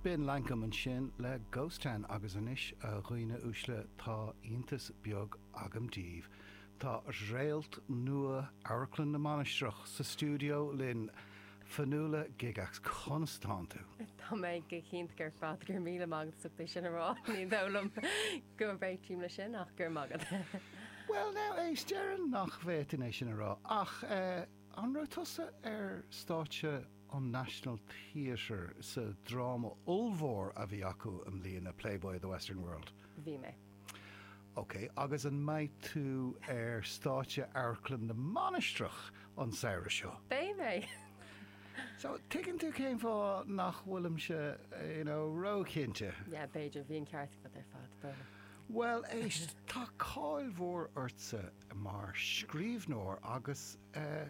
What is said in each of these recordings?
B'in Lankum ansin le Ghost Town agus anois, a dhaoine uaisle, tá iontas beag agam daoibh, tá réalt nua Amharclann na Mainistreach sa stiúideo linn! Fionnuala Gygax, conas tánn tú? Tá mé go hiontach ar fad, go raibh míle maith agat as ucht é sin a rá, ní dóigh liom go réitím le sin ach go raibh maith agat. Bhuel now, éist, déarfainn nach bhféadfainn é sin a rá ach eh, an raibh tusa ar stáitse? an National Theatre sa dráma ollmhór a bhí acu i mbliana, Playboy of the Western World. Bhí mé. OK, agus an mbeidh tú ar stáitse Amharclann na Mainistreach an samhradh seo? Beidh mé. So, tuigeann tú cén fáth nach bhfuilimse, you know, ró-chinnte. Yeah, b'fhéidir, bhí an ceart agat ar fad, b'fhéidir. Bhuel, éist, tá cáil mhór ortsa mar scríbhneoir agus eh.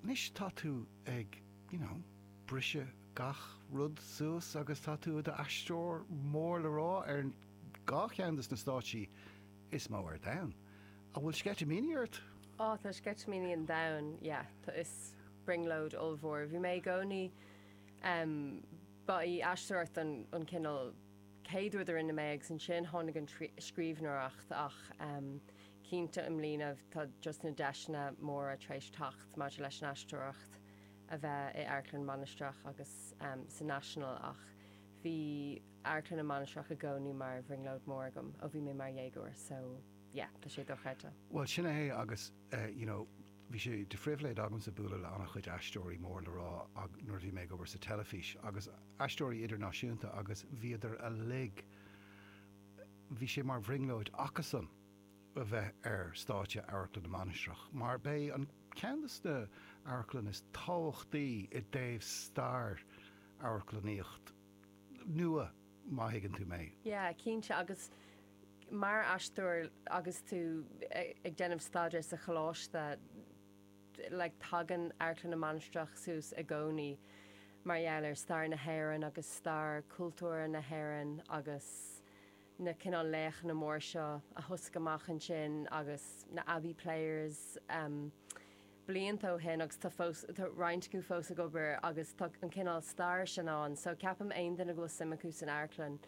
Anois tá tú ag, you know, briseadh gach rud suas agus tá tú i do aisteoir mór le rá ar an dá cheann de na stáitsí is mó ar domhan. An bhfuil sceitimíní ort? Ó, tá sceitimíní an domhain, yeah, tá is brionglóid ollmhór. Bhí mé i gcónaí em, ba í aisteoireacht an, an cineál céad rud a rinne mé agus ansin tháinig an scríbhneoireacht ach em, Cinnte i mbliana tá just na deiseanna móra tar éis teacht maidir leis an aisteoireacht a bheith i Amharclann na Mainistreach agus sa National ach bhí Amharclann na Mainistreach i gcónaí mar bhrionglóid mór agam ó bhí mé mar dhéagóir so yeah tá sé dochreidte. Bhuel sin é agus you know bhí sé de phribhléid agamsa bualadh le an-chuid aisteoirí mór le rá nuair a bhí mé ag obair sa teilifís agus aisteoirí idirnáisiúnta agus bhíodar uilig bhí sé mar bhrionglóid acusan a bheith ar stáitse Amharclann na Mainistreach mar b'é an ceann de na amharclann is tábhachtaí i dtaobh stair amharclannaíocht nua má thuigeann tú mé. Yeah, cinnte agus mar aisteoir agus tú ag déanamh staidéir sa choláiste like tagann Amharclann na Mainistreach suas i gcónaí mar gheall ar stair na hÉireann agus stair cultúrtha na hÉireann agus na cineál laochanna mór seo a thosaigh amach ansin agus na Abbey Players blianta ó shin agus tá fós, tá roinnt acu fós ag obair agus tá an cineál stair sin ann so ceapaim aon duine go bhfuil suim acu san amharclann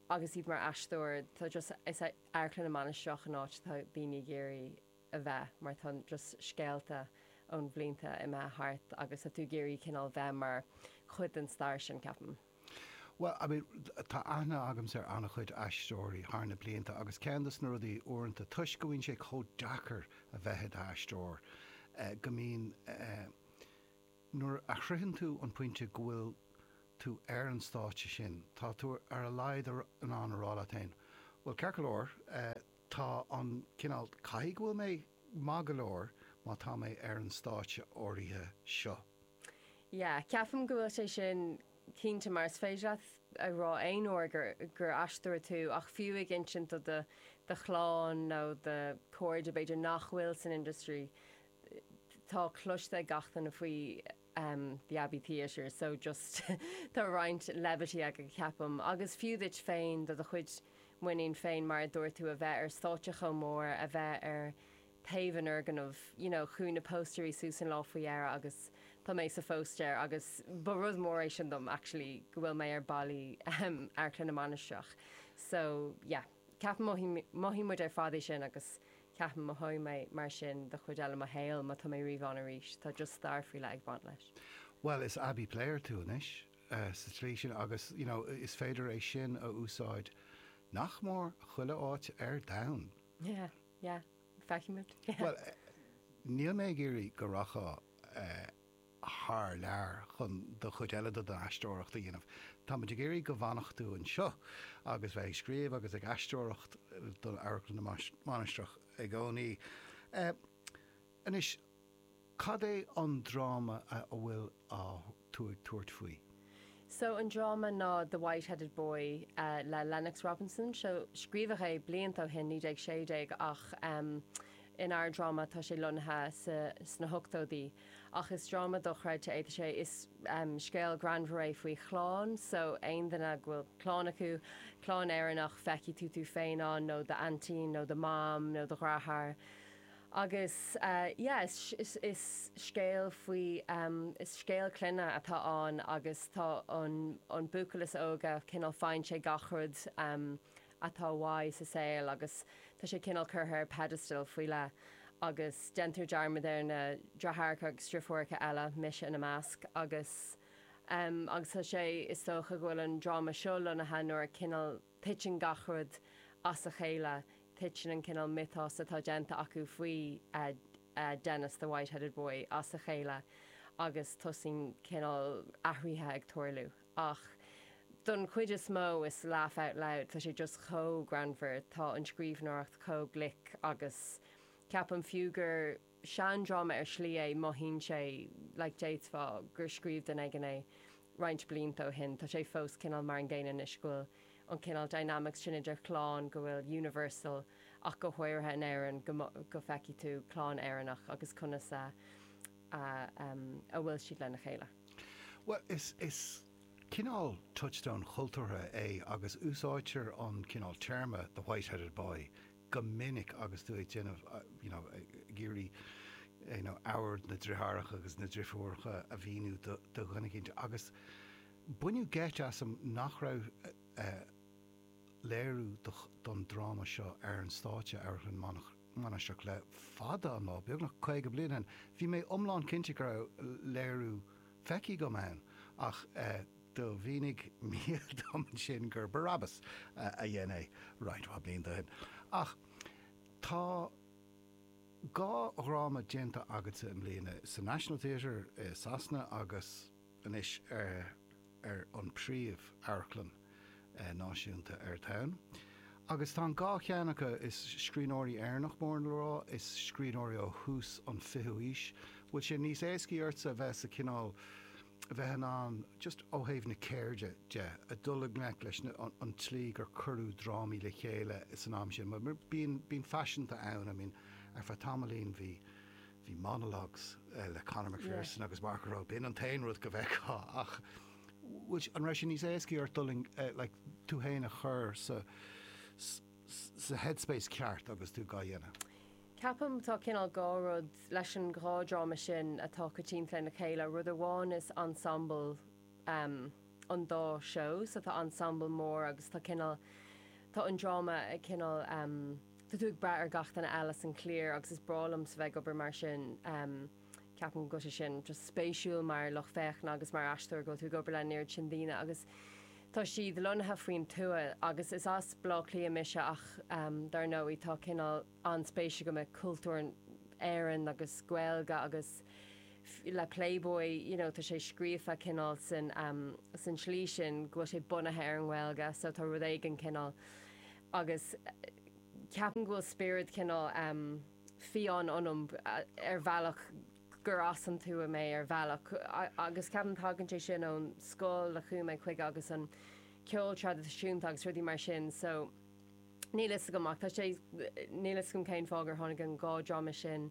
agus iad mar aisteoir tá just, is é Amharclann na Mainistreach an áit atá daoine ag iarraidh a bheith mar tá just scéalta ó na blianta imithe thart agus tá tú ag iarraidh cineál bheith mar chuid den stair sin ceapaim. Bhuel, I mean, tá aithne agamsa ar an-chuid aisteoirí thar na blianta agus ceann de na rudaí uaireanta, toisc go mbíonn sé chomh deacair a bheith i d'aisteoir, go mbíonn, nuair a shroicheann tú an pointe go bhfuil tú ar an stáitse sin, tá tú ar a laghad in ann a rá leat féin, bhuel, ceart go leor, tá an cineál, caithfidh go bhfuil mé. Maith go leor, má tá mé ar an stáitse áirithe seo. Yeah, ceapaim go bhfuil sé sin cinnte mar is féidir leat a rá aon uair gur aisteoir tú ach fiú ag insint do do chlann nó do chairde b'fhéidir nach bhfuil san industry tá cloiste ag gach duine faoi um the Abbey Theatre so just tá roinnt levity aige ceapaim agus fiú duit féin do do chuid muiníne féin mar a dúirt tú a bheith ar stáitse chomh mór a bheith ar taobh an fhoirgnimh you know chuaigh na póstaerí suas an lá faoi dheireadh agus tá mé sa phóstaer agus ba rud mór é sin dom actually go bhfuil mé ar ballaí um Amharclann na Mainistreach so yeah ceapaim mothaímid ar fad é sin agus Ceapaim mothóidh mé mar sin don chuid eile de mo shaol, má tá mé riamh ann arís, tá just stair faoi leith ag baint leis. Bhuel, is Abbey player tú anois, sa tslí sin, agus, you know, is féidir é sin a úsáid nach mór chuile áit ar domhan. Yeah, yeah. Feicfimid. Bhuel, níl mé ag iarraidh go rachfá eh. thar lear chun an chuid eile de do aisteoireacht a dhéanamh. Táimid ag iarraidh go bhfanfadh tú anseo agus bheith ag scríobh agus ag aisteoireacht do Amharclann na Mainistreach i gcónaí. Anois, cad é an dráma a bhfuil tú ag tabhairt faoi? So an dráma ná The White-Headed Boy le Lennox Robinson. Seo, scríobhadh é blianta ó shin, 1916, ach in ár dráma tá sé lonnaithe sna hochtóidí. Ach is dráma dochreidte é. Tá sé, is scéal greannmhar é faoi chlann. So aon duine go bhfuil clann acu, clann Éireannach, feicfidh tú tú féin ann, nó do aintín, nó do mham, nó do dheartháir. Agus yeah, is, is, is scéal faoi, is scéal clainne atá ann agus tá an, an buachaill is óige cineál faigheann sé gach rud atá uaidh sa saol agus tá sé cineál curtha ar pedestal faoi leith agus déantar dearmad ar na deartháireacha agus deirfiúracha eile, mise ina measc agus, agus tá sé, is dócha go bhfuil an dráma seo lonnaithe nuair a cineál. Titeann gach rud as a chéile. Titeann an cineál miotas atá déanta acu faoi Dennis the White-Headed Boy as a chéile agus tosaíonn cineál athruithe ag tarlú. Ach don chuid is mó is laugh out loud, tá sé just chomh greannmhar, tá an scríbhneoireacht chomh glic agus ceapaim fiú gur. seandráma ar shlí é, mothaíonn sé like déarfá gur scríobh duine éigin é roinnt blianta ó shin. Tá sé fós cineál mar an gcéanna anois, go bhfuil an cineál dynamics sin idir chlann, go bhfuil universal ach go háirithe in Éirinn go go feicfidh tú clann Éireannach agus conas a a em a bhfuil siad lena chéile. Bhuel is is cineál touchstone chultúrtha é agus úsáidtear an cineál téarma the white-headed boy go minic agus tú ag déanamh, you know, ag iarraidh, you know, ábhar na driotháracha agus na drifiúracha a mhíniú do, do dhuine eicínt agus baineadh geit asam nach raibh, eh, léiriú do, don dráma seo ar an stáitse, Amharclann Manach, Mainistreach le fada an lá, beagnach caoga bliain ó shin. Bhí mé iomlán cinnte go raibh léiriú feicthe agam ann ach, eh, Do mhínigh Mícheal dom ansin gur Barabbas a dhein é, roinnt mhaith blianta ó shin. Ach tá dhá dhráma déanta agatsa i mbliana, sa National Theatre i Sasana agus anois ar an bpríomh amharclann náisiúnta ar an oileán. Agus tá an dhá cheann acu is scríbhneoirí Éireannach mór le rá, is scríbhneoirí ó thús an fichiú aois. Bhfuil sé níos éascaí ortsa a bheith sa chineál. a bheith in ann, just ó thaobh na ceirde de, a dhul i ngleic leis na, an tslí gur cuireadh drámaí le chéile san am sin. Mar bíonn, bíonn faiseanta ann, I mean, ar feadh tamaillín bhí, bhí monologues le Conor McPherson agus Mark O'Rowe, b'in an t-aon rud go bhfeictheá ach bhfuil, an raibh sé níos éascaí ort dhul i, like, tú fhéin a chur sa, sa, sa headspace ceart agus tú dhá dhéanamh? Ceapaim tá cineál dhá rud leis an dhá dráma sin atá coitianta lena chéile. Rud amháin is ensemble an dá seó, so tá ensemble mór agus tá cineál, tá an dráma ag cineál, tá tú ag brath ar gach duine eile san chliar agus is breá liomsa a bheith ag obair mar sin. Ceapaim go bhfuil sé sin just spéisiúil mar lucht féachana agus mar aisteoir go bhfuil tú ag obair len oiread sin daoine agus tá siad lonnaithe faoin tuath agus is as Baile Átha Cliath mise ach dar ndóigh tá cineál an-spéis agam i gcultúr Éireann agus Gaeilge agus le Playboy, you know, tá sé scríofa cineál san san slí sin go bhfuil sé bunaithe ar an nGaeilge so tá rud éigin cineál agus ceapaim go bhfuil spiorad cineál fiáin ionam ar bhealach gur as an tuath mé ar bhealach agus ceapaim tagann sé sin ón scoil a chuaigh mé chuige agus an ceol traidisiúnta agus rudaí mar sin so Níl a fhios agam ach tá sé, níl a fhios agam cén fáth gur tháinig an dhá dráma sin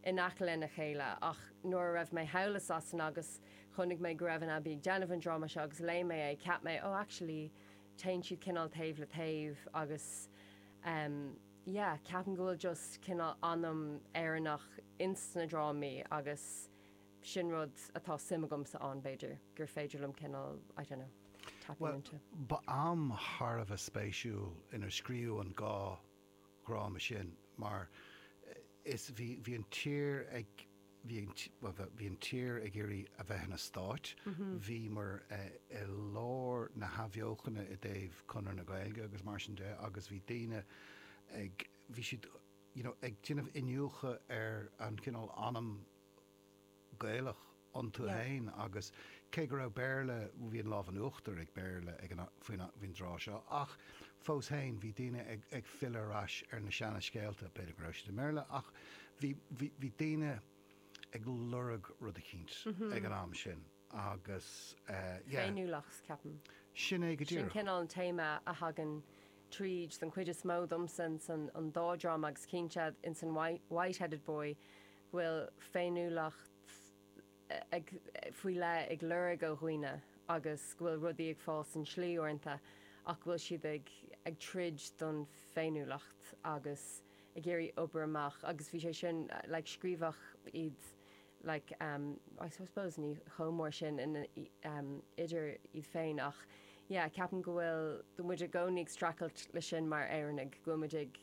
in aice lena chéile ach nuair a raibh mé thall i Sasana agus chonaic mé go raibh an Abbey ag déanamh an dráma seo agus léigh mé é cheap mé oh actually téann siad cineál taobh le taobh agus em yeah ceapaim go bhfuil just cineál anam Éireannach ins na drámaí agus sin rud atá suim agamsa ann, b'fhéidir gur féidir liom cineál, I don't know, tapping into. Ba am thar a bheith spéisiúil inar scríobhadh an dhá dhráma sin mar is, bhí, bhí an tír ag, bhí an, bhuel, bheith, bhí an tír ag iarraidh a bheith ina stáit, bhíomar i lár na hathbheochana i dtaobh Conradh na Gaeilge agus mar sin de agus bhí daoine ag, bhí siad, you know, ag déanamh iniúchadh ar an chineál anam, Gaelach iontu féin agus cé go raibh Béarla, bhí an lámh in uachtar ag Béarla ag an am, faoin am, faoin dtráth seo ach fós féin bhí daoine ag, ag filleadh ar ais ar na seana scéalta, b'fhéidir go raibh siad i mBéarla ach bhí, bhí, bhí daoine ag lorg rud eicínt ag an am sin agus eh, yeah. Féiniúlacht ceapaim. Sin é go díreach. Sin cineál an téama a thagann tríd den chuid is mó domsa ins an, an dá dhráma agus cinnte ins an White, Whiteheaded Boy bhfuil féiniúlacht ag, faoi leith ag lorg ó dhaoine agus go bhfuil rudaí ag fáil sa tslí uaireanta ach go bhfuil siad ag, ag troid don féiniúlacht agus ag iarraidh obair amach agus bhí sé sin, like scríobhadh iad like ehm I suppose ní chomh mór sin in ehm idir iad féin ach yeah ceapaim go bhfuil, go bhfuil muid i gcónaí ag stracailt leis sin mar Éireannaigh, go bhfuil muid ag.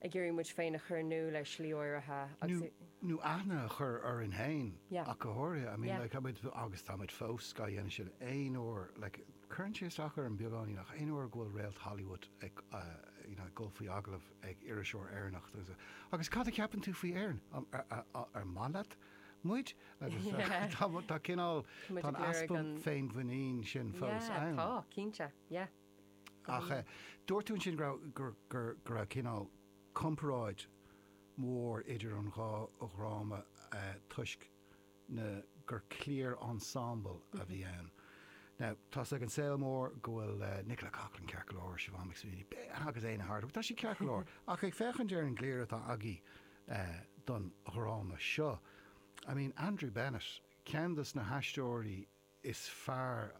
ag iarraidh muid féin a chur in iúl ar shlí áirithe agus nó aithne a chur orainn féin ach go háirithe. Yeah. I mean like tá muid, agus tá muid fós dhá dhéanamh sin, aon uair like cuireann sé isteach orm beagáinín ach aon uair go bhfuil réalt Hollywood ag you know ag dul faoi agallamh ag iriseoir Éireannach agus agus cad a cheapann tú faoi Éirinn? An maith leat muid? Agus tá cineál, tá an easpa féinmhuinín sin fós ann. Yeah, tá, cinnte. Yeah. Ach dúirt tú ansin go raibh cineál comparáid mhór idir an dhá dhráma toisc na gur cliar ensemble a bhí ann. Now tá 's ag an saol mór go bhfuil Nicola Coughlan ceart go leor, Siobhán McSweeney, agus Éanna Hardwicke, tá sé ceart go leor, ach ag féachaint ar an gcliar atá agaí don dhráma seo, I mean Andrew Bennett, ceann dos na haisteoirí, is fearr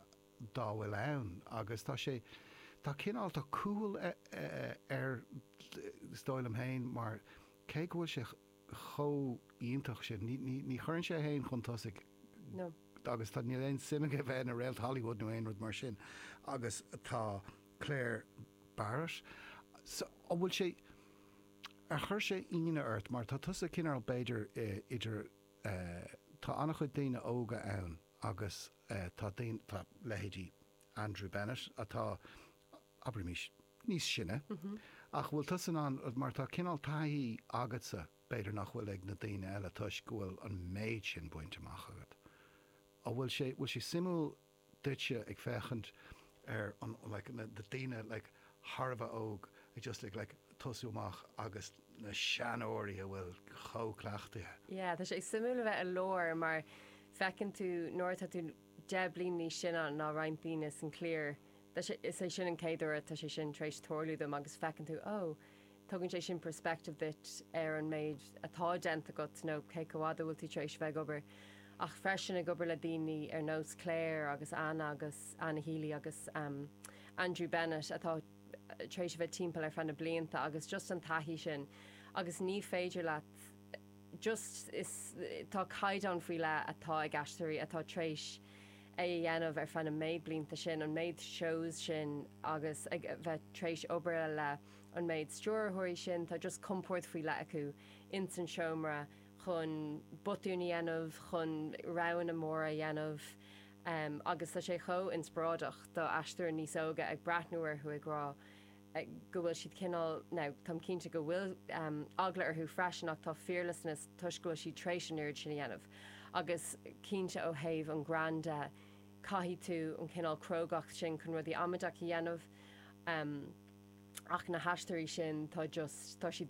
dá bhfuil ann agus tá sé, tá cineál cúthail air is dóigh liom féin mar cé go bhfuil sé chomh iontach sin, ní, ní, ní chuireann sé é féin chun tosaigh agus tá, níl aon suim aige a bheith ina réalt Hollywood nó aon rud mar sin agus tá Clare Barrett so, an bhfuil sé, ar chuir sé ionadh ort mar tá tusa cineál b'fhéidir idir. Tá an-chuid daoine óga ann agus tá daoine, tá leithéidí Andrew Bennett atá, abraimís, níos sine ach bhfuil tusa in ann, mar tá cineál taithí agatsa b'fhéidir nach bhfuil ag na daoine eile toisc go bhfuil an méid sin baint amach agat. An bhfuil sé, bhfuil sé suimiúil duitse ag féachaint ar an like na daoine like thar a bheith óg ag just ag like tosú amach agus na seanóirí a bhfuil chomh cleachtaithe. Sea, tá sé suimiúil a bheith i lár mar feiceann tú nuair atá tú deich bliana níos sine ná roinnt daoine san chliar tá sé is é sin an chéad uair tá sé sin tar éis tarlú dom agus feiceann tú oh Tugann sé sin perspective duit ar an méid atá déanta agat nó cé chomh fhada a bhfuil tú tar éis a bheith ag obair ach freisin ag obair le daoine ar nós Clare agus Anna agus an Seoighe agus Andrew Bennett atá tar éis a bheith timpeall ar feadh na blianta agus just an taithí sin agus ní féidir leat just is tá caighdeán faoi leith atá ag aisteoirí atá tar éis é a dhéanamh ar feadh na méid blianta sin an méid shows sin agus a bheith tar éis obair le an méid stiúrthóirí sin, tá just compord faoi leith acu ins an seomra chun botúin a dhéanamh, chun roghanna móra a dhéanamh agus tá sé chomh inspioráideach do aisteoirí níos óga ag breathnú orthu ag rá go bhfuil siad cineál, now táim cinnte go bhfuil eagla orthu freisin ach tá fearlessness toisc go bhfuil siad tréis an oiread sin a dhéanamh agus cinnte ó thaobh an greann de, Caithfidh tú an cineál crógacht sin chun rudaí amaideach a dhéanamh. Ach na haisteoirí sin, tá just, tá siad.